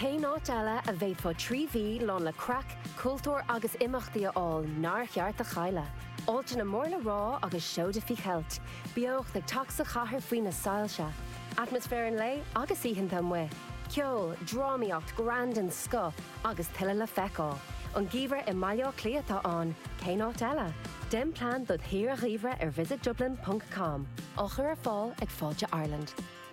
Cén áit eile a bhféadfá trí mhí lán le craic, cultúr agus imeachtaí a fháil nár cheart a chailleadh? Áiteanna mór le rá agus seoda faoi cheilt, beocht ag teacht sa chathair faoi na soilse, atmaisféar an lae agus oícheanta amuigh, ceol, drámaíocht, greann den scoth agus tuilleadh le feiceáil. An Geimhreadh i mBaile Átha Cliath atá ann, cén áit eile? Déan plean dod' shaoire gheimhridh ar visitdublin.com, á chur ar fáil ag Fáilte Ireland.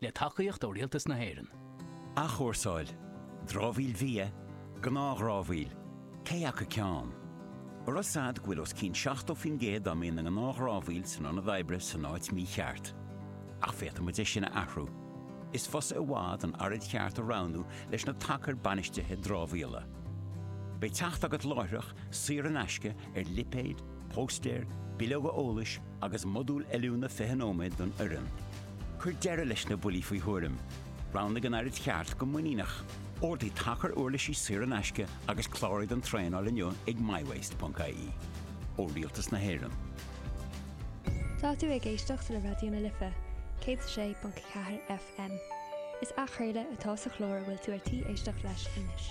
le tacaíocht ó Rialtas na hÉireann. Athchúrsáil, dramhaíl bhia, gnáthdhramhaíl, cé acu ceann? An raibh a fhios agat go bhfuil os cionn 70% dá mbíonn ina ghnáthdhramhaíl san ionad oibre san áit mícheart. Ach féadfaidh muid é sin a athrú. Is fusa i bhfad an araid cheart a roghnú leis na tacair bainistithe dramhaíola. Beidh teacht agat láithreach, saor in aisce, ar lipéid, Póstaeir, bileoga eolais agus modúl oiliúna 20 nóiméad don fhoireann. Cuir deireadh leis na buillí faoi thuairim, roghnaigh an araid cheart go muiníneach, ordaigh tacar uirlisí saor in aisce agus cláraigh don traenáil inniu ag myWaste.ie. Ó Rialtas na hÉireann. Tá tú ag éisteacht le Raidió na Life, 106.4 FM. Is athchraoladh atá sa chlár a bhfuil tú ar tí éisteacht leis anois.